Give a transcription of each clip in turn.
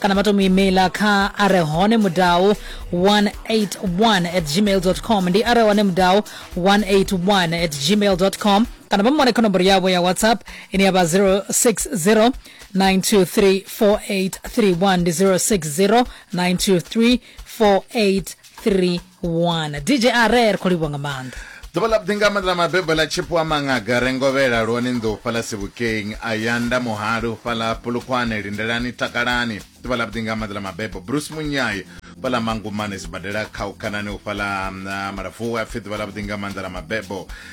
kana vha to mu emaila kha a re hone mudau 181 at gmail com ndi a re hone mudau 181 at gmail com kana vha mu wane kha nomboro yavho ya whatsapp ine ya vha 060 9234831 ndi 060 9234831 wana dj a re ri khou livhuwa nga maanḓa ḓuvha ḽa vhuḓi nga maanḓa ḽa mabebo ḽa tshipo wa maṅaga re ngovhela lwone nḓou fhaḽa sibukeng ayanda muhali u fhaḽa pulukhwane lindelani takalani ḓuvha ḽa vhuḓi nga maanḓa ḽa mabebo bruce munyai fhaḽa mangumane sibadela khaukhanani u fhaḽa mm, malafuwe a pfhi ḓuvha ḽa vhuḓi nga maanḓa ḽa mabebo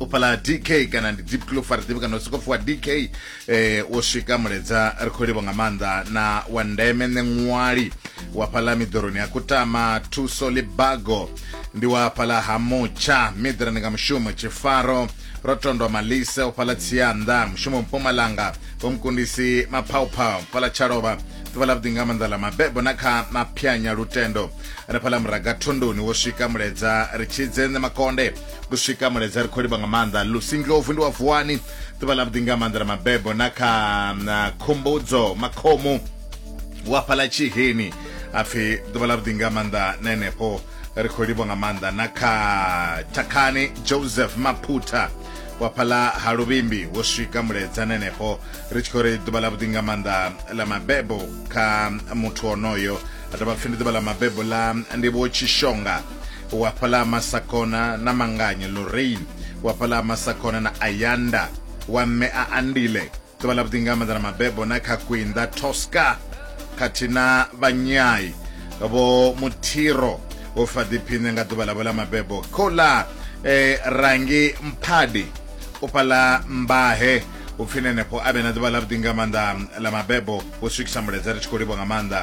u fhala dk kana ndi deep clof ri ḓivhi kana u sokofu wa dk eh, wo swika muledza ri khou livho nga maanḓa na wa ndeme nṋe ṅwali wa fhala miḓoroni ya kutama thuso libago ndi wa fhala ha mutsha midra ndi nga mushumo tshifaro ro tondwa malise u fhala tsianda mushumo mpumalanga vhomukundisi maphauphau fhala tshalova ḓuvha ḽa vhuḓi nga maanḓa ḽa mabebo na kha maphyanya lutendo ri fhala muraga thondoni wo swika muledza ri tshidze nṋe makonde ku swika mulaedza ri khou livha nga maanḓa lusi ndlovu ndi wa vuwani ḓuvha ḽa vhuḓi nga maanḓa la mabebo na kha na khumbudzo makhomu wa fhala tshiheni apfi ḓuvha ḽa vhuḓi nga maanḓa na henefho ri khou livha nga maanḓa na kha thakhani joseph maphutha wa fhala ha luvhimbi wo swika mulaedza na henefho ri tshi khou ri ḓuvha ḽa vhuḓi nga maanḓa la mabebo kha muthu onoyo a dovha pfi ndi ḓuvha ḽa mabebo ḽa ndivho tshishonga wa fhaḽa ha masakona na manganya lorraine wa fhaḽa ha masakona na ayanda wa mme a andile ḓuvha ḽa vhuḓi nga maanḓa na mabebo na kha kwinda tosca khathihi na vhanyai vho muthiro vho fa ḓiphiṋe nga ḓuvha ḽavho ḽa mabebo khola eh, rangi mphadi u fhaḽa mbahe upfi nenefho a vhe na ḓuvha ḽa vhuḓi nga maanḓa ḽa mabebo vho swikisa muledzere tshi khou livho nga maanḓa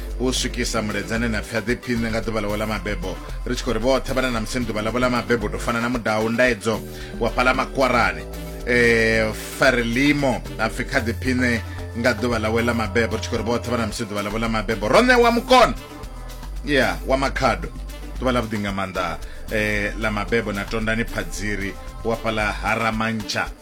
u swikisa muledzane na pfi a ḓiphiṋe nga ḓuvha ḽawe ḽa mabebo ri tshi khou ri vhoṱhe vhana na musi ni ḓuvha ḽavho ḽa mabebo to fana na mudau ndaedzo wa fhala makwarani um farelimo a pfi kha ḓiphiṋe nga ḓuvha ḽawe ḽa mabebo ri tshi khou ri vhoṱhe vhana musi ḓuvha ḽavho ḽa mabebo ro ṋewa mukona ya wa makhado ḓuvha ḽa vhuḓi nga maanḓa um ḽa mabebo na tondani phadziri wa fhala haramantsha